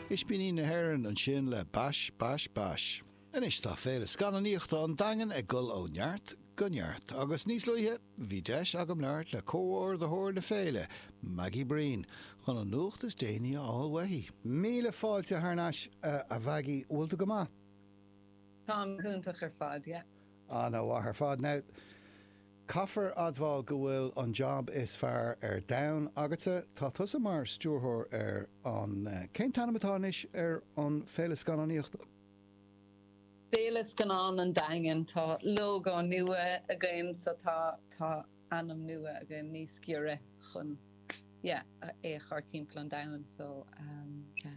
Ispíní na hÉireann ansin le Bash Bash Bash. Anois tá Féile Scannánaíochta an Daingin ag dul ó neart go neart agus níos luaithe bhí deis agam labhairt le comhordaitheoir na féile, Maggie Breen, chun an nuacht is déanaí a fháil uaithi. Míle fáilte thar n-ais, a Mhaggie. Bhfuil tú go maith? Táim go hiontach ar fad, yeah. Ana mhaith ar fad. Now. Caithfear admháil go bhfuil an jab is fearr ar domhan agatsa, tá tusa mar stiúrthóir ar an, cén t-ainm atá anois ar an féile scannánaíochta? Féile Scannán an Daingin, tá lógó nua againn so tá tá ainm nua againn níos giorra chun yeah é a chur timpeall an domhain so yeah.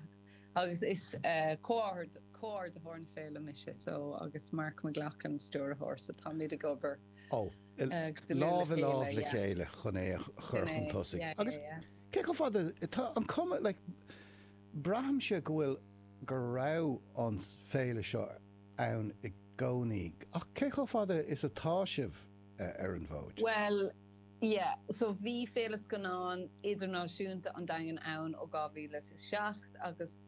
Agus is comhordaitheoir na féile mise, so, agus Mark McLoughlin, stiúrthóir, so táimid ag obair go dlúth le chéile, yeah. Lámh i lámh le chéile chun é a chur chun tosaigh. Yeah, yeah, yeah. Agus cé chomh fada, tá an cuma, like, braithimse go bhfuil, go raibh an féile seo ann i gcónaí ach cé chomh fada is atá sibh ar an bhfód? Bhuel, Yeah so bhí Féile Scannán Idirnáisiúnta an Daingin ann ó 2007 agus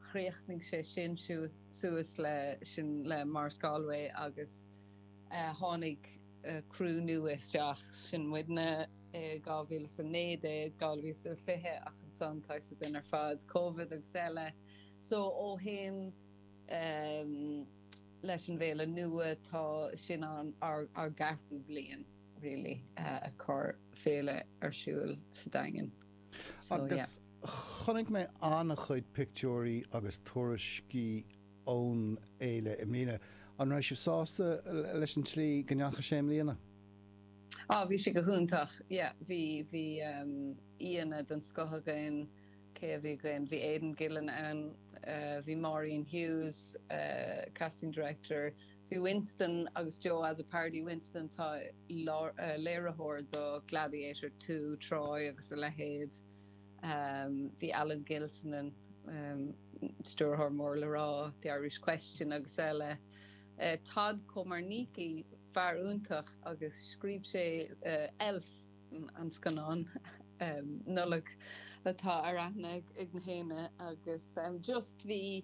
chríochnaigh sé sin siúd suas le sin le Maurice Galway agus tháinig criú nua isteach, sin muidne, i 2019, 2020 ach ansan tá a fhios againn ar fad, Covid agus eile. So ó shin leis an bhFéile nua tá sinn inár gceathrú bliain. really, ag cur féile ar siúl sa Daingean. So, yeah. Agus chonaic mé ana-chuid pictiúirí agus tuairiscí ón fhéile i mbliana. An raibh sibh sásta leis an tslí go ndeachaigh sé i mbliana? Ah, bhí sé go hiontach, yeah. Bhí, bhí aíonna den scoth againn, cé a bhí againn? Bhí Aidan Gillen ann, bhí Maureen Hughes, casting director, Bhí Winston agus Joe Azzopardi. Winston, tá léiritheoir do Gladiator two, Troy agus a leithéid. Bhí Alan Gilsenan, stiúrthóir mór le rá, The Irish Question agus eile. Todd Komarnicki, fear iontach agus scríobh sé Elf, an scannán Nollag atá ar aithne ag nach éinne agus just bhí.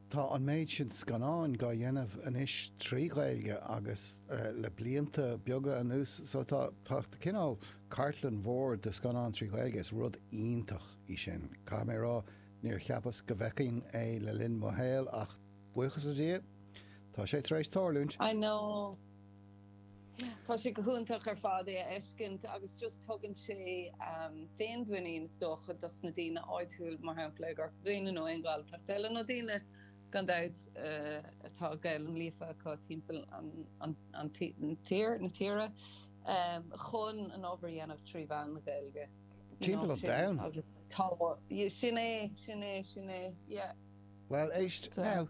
Tá an méid sin scannán dhá dhéanamh anois trí Ghaeilge agus le blianta beaga anuas so tá cineál cartlann mhór de scannán trí Ghaeilge. Is rud iontach í sin. Caithfidh mé a rá níor cheapas go bhfeicfinn é le linn mo shaoil ach buíochas le Dia tá sé tar éis tarlúint. I know. Tá sé go hiontach ar fad é a fheiscint agus just tugann sé féinmhuinín is dócha dos na daoine áitiúil, mar shampla i gCorca Dhuibhne nó aon Ghaeltacht eile nó daoine gan dabht atá Gaelainn líofa acu timpeall an tír, na tíre, chun an obair a dhéanamh trí mheán na Gaeilge. Timpeall an domhain. Sin é, sin é, sin é, yeah. Bhuel, éist, now,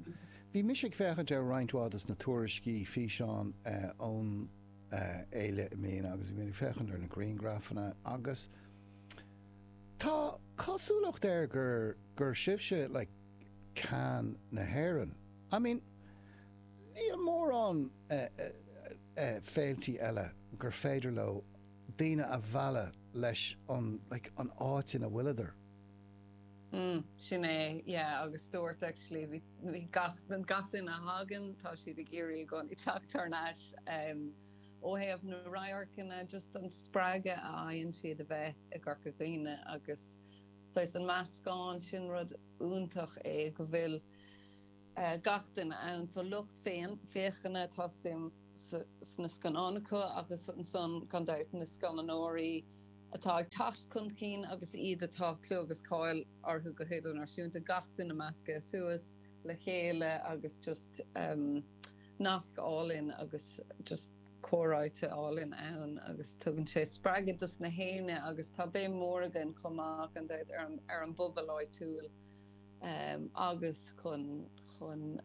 bhí mise ag féachaint ar roinnt mhaith des na tuairiscí, físeáin ón fhéile i mbliana agus bhí mé ag féachaint ar na griangrafanna agus tá cosúlacht air gur, gur sibhse like Cannes na hÉireann. I mean, níl mórán féiltí eile gur féidir leo daoine a mhealladh leis an áit ina bhfuileadar. Umm, sin é, yeah, agus stiúrthóir actually bhí gach gach duine a thagann tá siad ag iarraidh i gcónaí teacht thar n-ais ó thaobh na radharcanna just an spreagadh a fhaigheann siad a bheith i gCorca Dhuibhne agus saghas an meascán sin rud iontach é go bhfuil gach duine ann. Sa lucht féachana, tá suim sna scannáin acu agus ansan, gan dabht, na scannánóirí atá ag teacht chun cinn agus iad atá clú agus cáil orthu go hidirnáisiúnta, gach duine measctha suas le chéile agus just nasc álainn agus just comhráite álainn ann agus tugann sé spreagadh dos na haon duine agus tá béim mhór againn chomh maith, gan dabht, ar an bpobal áitiúil. agus chun chun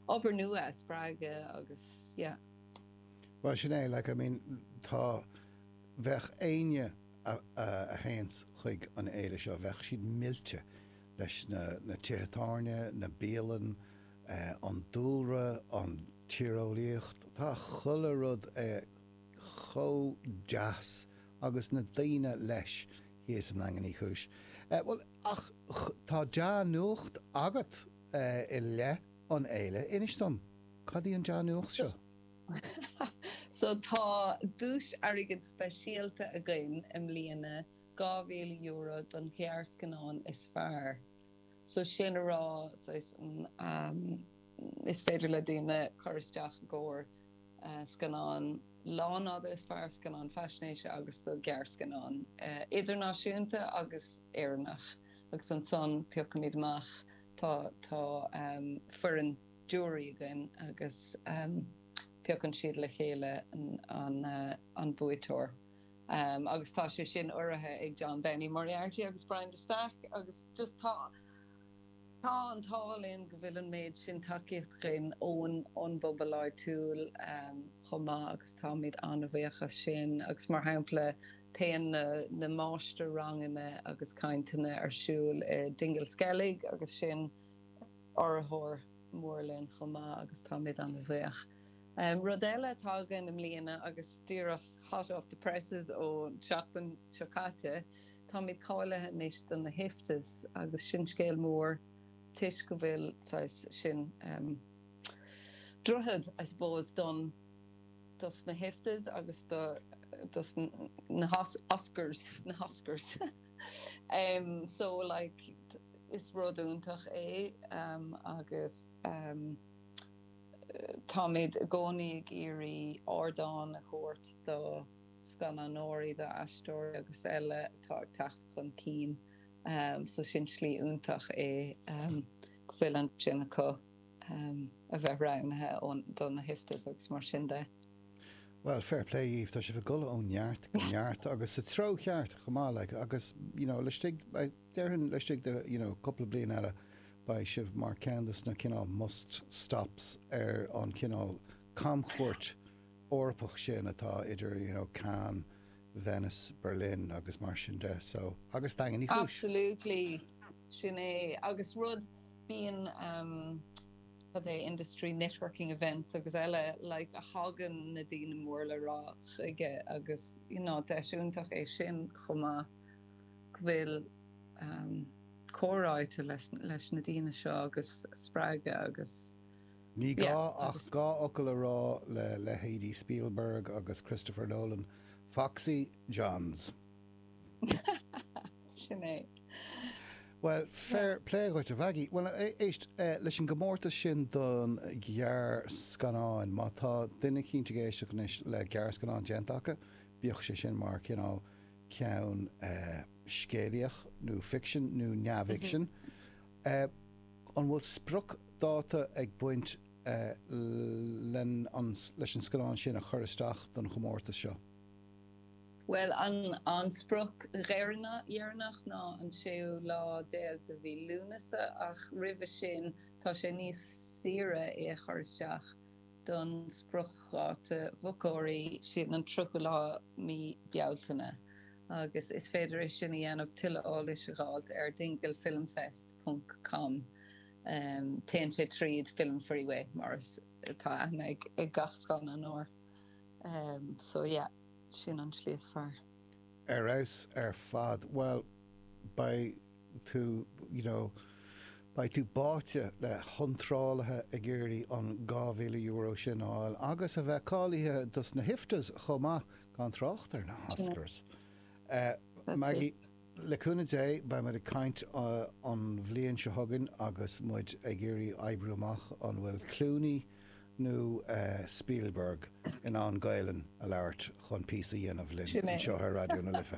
obair nua a spreagadh agus yeah. Bhuel sin é, like I mean tá, bheadh éinne a théann chuig an fhéile seo bheadh siad millte leis na tithe tábhairne, na bialann, an dúlra, an tíreolaíocht, tá chuile rud chomh deas agus na daoine leis, thíos i nDaingean Uí Chúis. Bhuel. Ach tá dea-nuacht agat i leith an fhéile. Inis dom, cad í an dea-nuacht seo? So, tá duais airgid speisialta againn i mbliana, €2,000 don ghearrscannán is fearr. So, sin a rá, saghas, is féidir le daoine cur isteach i gcomhair. scannán lánfhada, is fearr scannán faisnéise agus do ghearrscannán idirnáisiúnta agus Éireannach agus ansan piocaimid amach, tá tá foireann jury againn agus piocann siad le chéile an an buaiteoir agus tá sé sin urraithe ag John Benny Moriarty agus Brian de Staic agus just tá. Tá an t-ádh linn go bhfuil an méid sin tacaíocht againn ón, ón bpobal áitiúil chomh maith agus táimid an-bhuíoch as sin agus mar shampla téann na máistir-ranganna agus cainteanna ar siúl i Dingle Skellig agus sin urraitheoir mór linn chomh maith agus táimid an-bhuíoch. Rud eile atá againn i mbliana agus díreach hot off the presses ó seachtain seo caite, Táimid cáilithe anois do na hIFTAs agus sin scéal mór toisc go bhfuil, saghas, sin em droichead, I suppose, don, dos na hIFTAs agus do, dos na hOscars, na hOscars. em, so, like, is rud iontach é agus em táimid i gcónaí ag iarraidh ardán a thabhairt do, scannánóirí, d'aisteoirí agus eile atá ag teacht chun cinn so sin slí iontach é go bhfuil an seans acu a bheith roghnaithe do na hIFTAs agus mar sin de. Bhuel, fair play daoibh, tá sibh ag dul ó neart go neart agus sa treo cheart chomh maith, like, agus, you know, laistigh, déarfainn laistigh de, you know, cúpla bliain eile beidh sibh mar ceann de na cineál must stops ar an chineál camchuairt. Eorpach sin atá idir you know Cannes, Venice, Berlin agus mar sin de so agus Daingean Uí Chúis. Absolutely, sin é agus rud bíonn ehm goidé industry networking events agus eile like a thagann na daoine mór le rá chuige agus you know deis iontach é sin chomh maith go bhfuil ehm comhráite leis na daoine seo agus spreagadh agus Ní gá ach dhá fhocal a rá le leithéidí Spielberg agus Christopher Nolan, Foxy John's. Sin é. Bhuel, fair play dhuit, a Mhaggie. Bhuel, éist, leis an gcomórtas sin don ghearrscannáin, má tá duine éigint ag éisteacht anois le gearrscannán déanta acu, bíodh sé sin mar cineál ceann scéalaíoch nó ficsin nó neamhfhicsin, a. An bhfuil spriocdháta ag baint leis an scannán sin a chur isteach don chomórtas seo? Bhuel, an sprioc dheireanach, dheireanach ná an séú lá déag de mhí Lúnasa ach roimhe sin tá sé níos saoire é a chur isteach. don spriocdháta mhochóirí, sin an 30ú lá mí Bealtaine, agus is féidir é sin a dhéanamh, tuilleadh eolais a dh'fháilt ar dinglefilmfest ponc com em téann sé tríd Film Freeway, mar is atá aithne ag gach scannánóir air, so yeah, sin an slí is fearr. Ar fheabhas ar fad. Bhuel, beidh. tú, you know, beidh tú báite le hiontrálaithe ag iarraidh an €2,000 sin a fháil agus a bheith cáilithe dos na hIFTAs chomh maith, gan trácht ar na hOscars. Maggie, le cúnamh Dé, beidh muid ag caint an bhliain seo chugainn agus muid ag iarraidh oibriú amach an bhfuil Clooney nó Spielberg in ann Gaelainn a labhairt chun píosa a dhéanamh linn anseo ar Raidió na Life.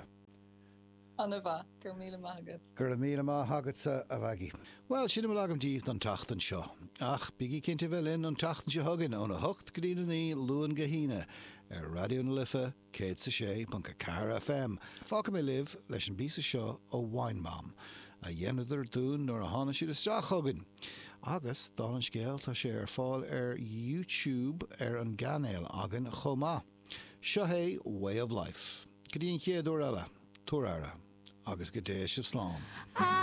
An-mhaith, go raibh míle maith agat. Go raibh míle maith agatsa, a Mhaggie. Bhuel, sin a bhfuil agam díbh don tseachtain seo. Ach bígí cinnte a bheith linn an tseachtain seo chugainn óna hocht go dtína naoi, Luan go hAoine, ar Raidió na Life 106.4 FM. Fágfaidh mé sibh leis an bpíosa seo ó Wine Mom, a dheineadar dúinn nuair a tháinig siad isteach chugainn. Agus, dála an scéil, tá sé ar fáil ar YouTube ar an gcainéal againn chomh maith. Seo é Way of Life. Go dtí an chéad uair eile, tabhair aire, agus go dté sibh slán.